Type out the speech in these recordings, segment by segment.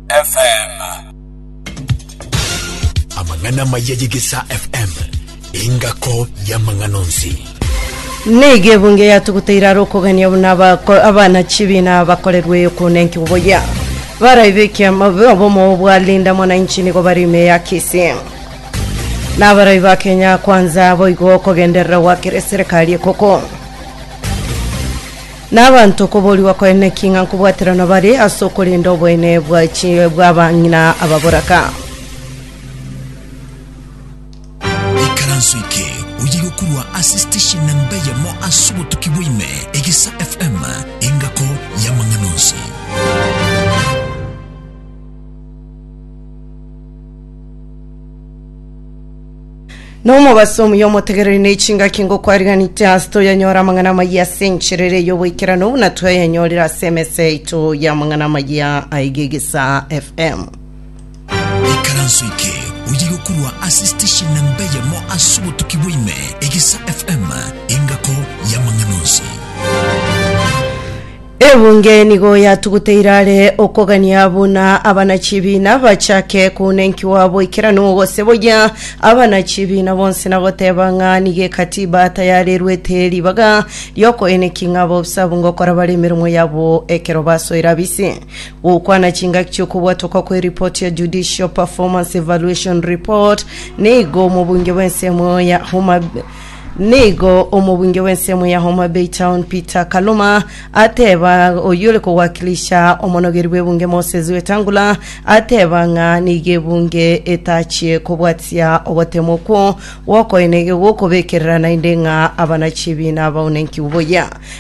FM. Amang'ana maya y'Egesaa FM, engako y'amang'ana onsi. Nigo ebunge yatuguteire are okogania buna abako- abana chibina bakorerwe okonenki oboyia baraibe ekiama obomo bwa linda mwananchi nigo bare ime ya Kisii na abarai ba Kenya kwanza boigo okogenderera gwakire serikali ekoko Na abanto koboorigwa koenene ki ng'a nkobwaterana bare ase okorenda oboene bwa chi bw'abang'ina ababoraka. Ikaranso eke oye gokurwa ase station namba eyemo ase obotuki bwa ime, Egesa FM, engako y'amang'ana onsi. Nomobaso omuya omotegereri ne chingaki ngokwariganite ase toyanyora amang'ana amayia ase enchera ere y'oboikeranu buna twayanyorire ase emesa yaito y'amang'ana amayia aiga egesa FM. ikaranso ike oye gokorwa ase station namba eyemo ase obotuki bwaime egesa fm engako yamang'ana onsi Ebunge nigo yatuguteire are okogania buna abana-chibiina bachake kounenkigwa boikeranu gose boyia abana-chibiina bonsi na goteba ng'a nigo Ekatiba tayarerwete ribaga riokoeneki ng'a baobsabu ngokora bare emeremo yabo ekero basoire abise gokwana chingaki chi'okobwatoka kw'eripoti ya Judicial Performance Evaluation Report. Nigo omobunge bw'ensemo ya Homa Nigo omobunge bw'ensemo ya Homa Bay Town Peter Kaluma ateba oyio ore kowakilisha omonogeri bw'ebunge Moses Wetangula ateba ng'a nigo ebunge etachie kobwatia ogotema okwo gwokoenegwa gwokobekerera naende ng'a abana chibiina baonenkigwe buya.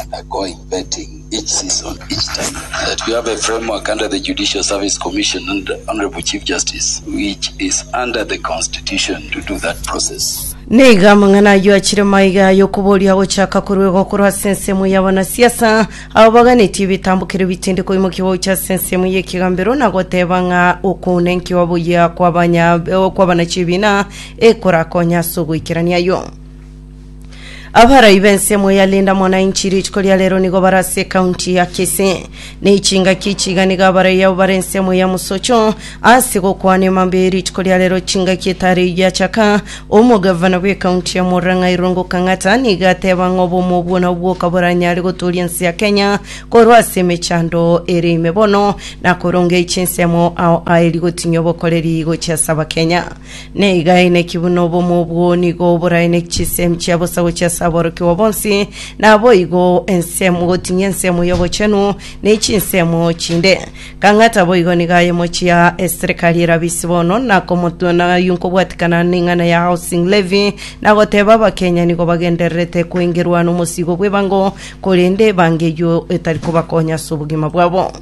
undergoing vetting each season, each time, that we have a framework under the Judicial Service Commission and the Honourable Chief Justice, which is under the Constitution to do that process. Nigo amang'ana ayio achire maiga y'okoboria gochaka korwa igo korwa ase ensemo y'abanasiasa abo baganetie ebitambokero bitindi koimokia gocha ase ensemo y'ekegambero na goteba ng'a okounenkiwa boyia kw'abanya- kw'abanachiebina ekorakonye ase ogoikerania ayio. Abarai b'ensemo ya Linda Mwananchi rituko ria rero nigo bare ase ekaunti ya Kisii na echingaki echiga nigo abarai abo bare ensemo ya mosocho ase gokwana emambia ye rituko ria rero chingaki etari eyio yachaka omogavana bw'ekaunti ya Murang'a Irungu Kang'ata nigo ateba ng'a obomo obwo nabwo bokaboranyare gotooria ense ya Kenya korwa ase emechando ere ime bono na korongeria chinsemo ao aeri gotinyia obokoreri gochia ase Abakenya. Neigaeneki buna obomo obwo nigo oboraeneki chisemi chia bosa gochia ase aborokigwa bonsi, naboigo ensemo gotinyia ensemo y'obochenu ne chinsemo chinde. Kang'ata boigo nigo aye mochia eserekari erabe ise bono, nakomotu- na nkobwatikana neng'ana ya housing levy, nagoteba abakenya nigo bagendererete koengerwa nomosigo bw'ebango, korende ebango eyio etari kobakonya ase obogima bwabo.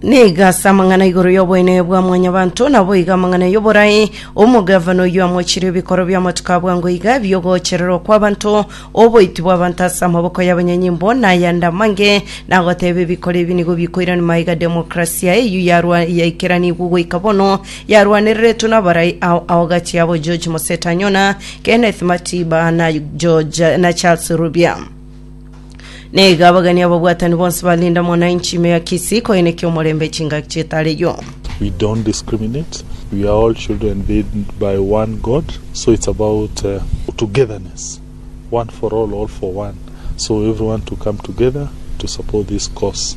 Nigo ase amang'ana igoro y'oboenene bwa mwanyabanto, naboigo amang'ana y'oborai, omogavana oyio amochirie ebikoro bi'amatuko a bwango iga, bi'ogoochererwa kw'abanto, oboiti bw'abanto ase amaboko y'abanyanyimbo, na ayande amange, na agoteeba ebikoro ebi nigo bikoiranima iga demokrasia eyio yarwa yaikeranigwe goika bono, yarwanereretwe nabarai ao ao gati yabo George Mosetanyona, Kenneth Matiba, na George na Charles Rubia. Na iga abageni ababwatani bonsi ba Linda Mwananchi ime ya Kisii koenekia omorembe chingaki chietareyo. we don't discriminate we are all children made by one god so it's about uh, togetherness one for all all for one so everyone to come together to support this cause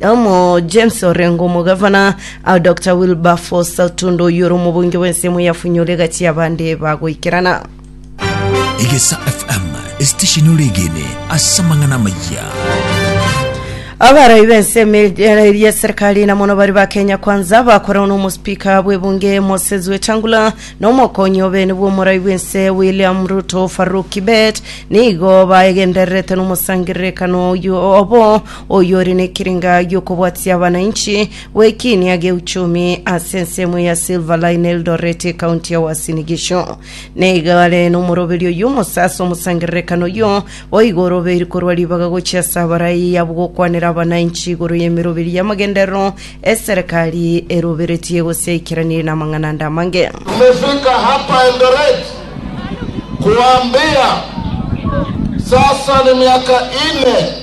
Amo James orengo omogavana ah, Dr Wilberforce Tundo oyio ore omobonge bw'ensemo ya Funyole gati abande bagoikerana. Egesa FM esitesheni oregene ase amang'ana amayia Abarai b'ensemo eria eserikali na mono bari ba Kenya Kwanza bakorana n'omosipika bw'ebunge Moses Wetangula na omokonyi obene bw'omorai bw'ense William Ruto Farouk Kibet nigo baegendererete n'omosangererekano oyio obo oyore nekerenga giokobwatia abanainchi gwekiinia geuchumi ase ensemo ya Silver Line Eldoret ekaunti ya Uasin Gishu. Naiga are nomoroberi oyio omose ase omosangererekano oyio boigo orobeiri korwa ribaga gochia ase abarai abwo gokwanera abanainchi igoro yemeroberi yamagenderero eserekari eroberetie gose yaikeranirie namang'ana ande amange. Tumefika hapa Eldoret kuwaambia sasa ni miaka nne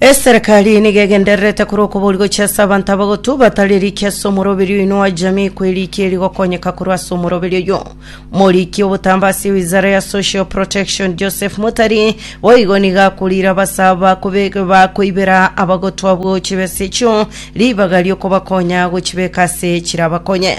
Eserekari nigo egendererete korwa okobori gochia ase abanto abagotu batari erikia ase omoroberio oino wa jamii kwa erikia erigokonyeka korwa ase omoroberio oyo morikia obotambo ase wizara ya social protection joseph mutari boigo nigo akorire abasa bakobe- bakoibera abagotu abwo chibesa echio ribaga riokobakonya gochibeka ase chirabakonye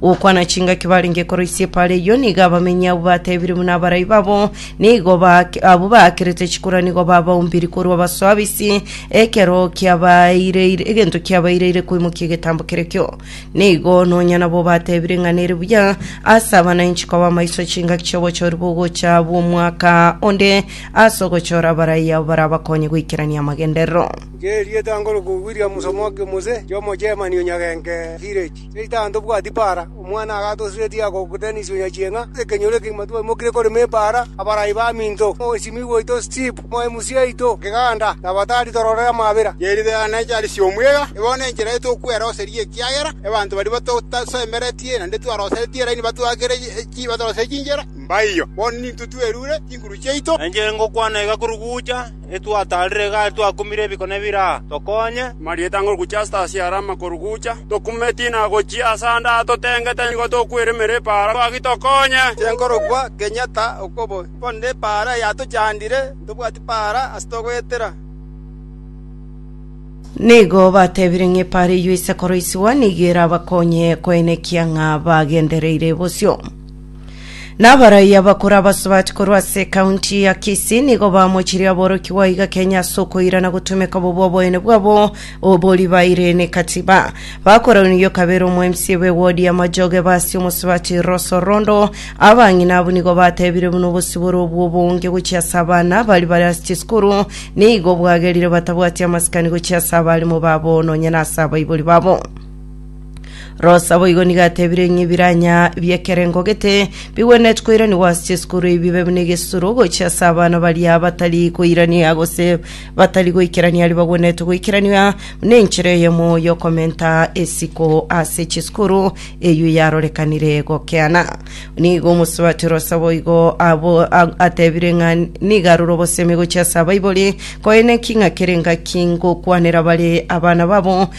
Gokwana chingaki barenge koroisia epaara eyio, nigo abamenyi abwo batebirie buna abarai babo nigo baak- abwo baakerete chikura nigo babaumbiri korwa abaso abisi, ekero kiabaireire egento kiabaireire koimokia egetambo kerekio. Nigo nonya nabo batebirie ng'a nere buya ase abananchi koba amaiso chingaki chi'obochori bw'ogocha bw'omwaka onde ase ogochora abarai abo barabakonye goikerania amagenderero. Ng'eria etangoro kobua Williams Omoke Muse, Jomo Germany Onyagenke Village. Seitani, tobwati paara, omwana agatosiretie agogotenisia onya chieng'a, ekenyoro ekegima tibamokire korema epaara, abarai baminto, omosimigwa oito Steve, omoe musie aito Kiganda, na batari tororere amabera. Chiaritera ne chiari chi'omwega, ebono enchera yaito okweroseria ekiagera abanto baria batotasemeretie naende twaroseretie eraini batwakere batoroserie chinchera, mbaiyo. Bono nintwe twerure chinguru chiaito. Enchera ngokwana iga korugucha. etwataarire igare twakumire ebikone bire aa, tokonye.” Marieta ng'a ogocha ase tasi are amakorugucha, tokumeti na gochia ase ande aa totengete, nigo tokweremera epaara, gaki tokonye. Tinkorokwa kenyata okobo, korende epaara yatochandire, ntobwati paara ase togoetera. Nigo batebire ng'a epaara eyio ise koroisigwa nigo erabakonye koenekia ng'a bagendereire bosio. Nabaraia bakura abasubati korwa ase ekaunti ya Kisii nigo bamochirie aborokigwa iga Kenya ase okoirana gotumeka bobe oboyene bwabo obori baire nekatiba. Bakoraunigio kabere omo MCA be ward ya Majoge Basi omosubati Rose Orondo abang'ina abwo nigo batebire buna obosibore obwo obonge gochia ase abana bari bare ase chisukuru nigo bwagerire batabwati amasikani gochia ase abarimo babo nonya nase abaibori babo. Rosa boigo nigo atebire ng'a ebiranya bi'ekerengo gete bigwenereti koiranigwa ase chisukuru ebi bibe buna egesusuro gochia ase abana baria batari koirania gose batari goikerania aria bagwenereti goikerania buna enchera eyemo y'okomenta esiko ase chisukuru eyio yarorekanire gokeana. Nigo omosubati Rosa boigo abo a- atebire ng'a nigo arure obosemi gochia ase abaibori koene ki ng'a kere engaki ngokwanera bare abana babo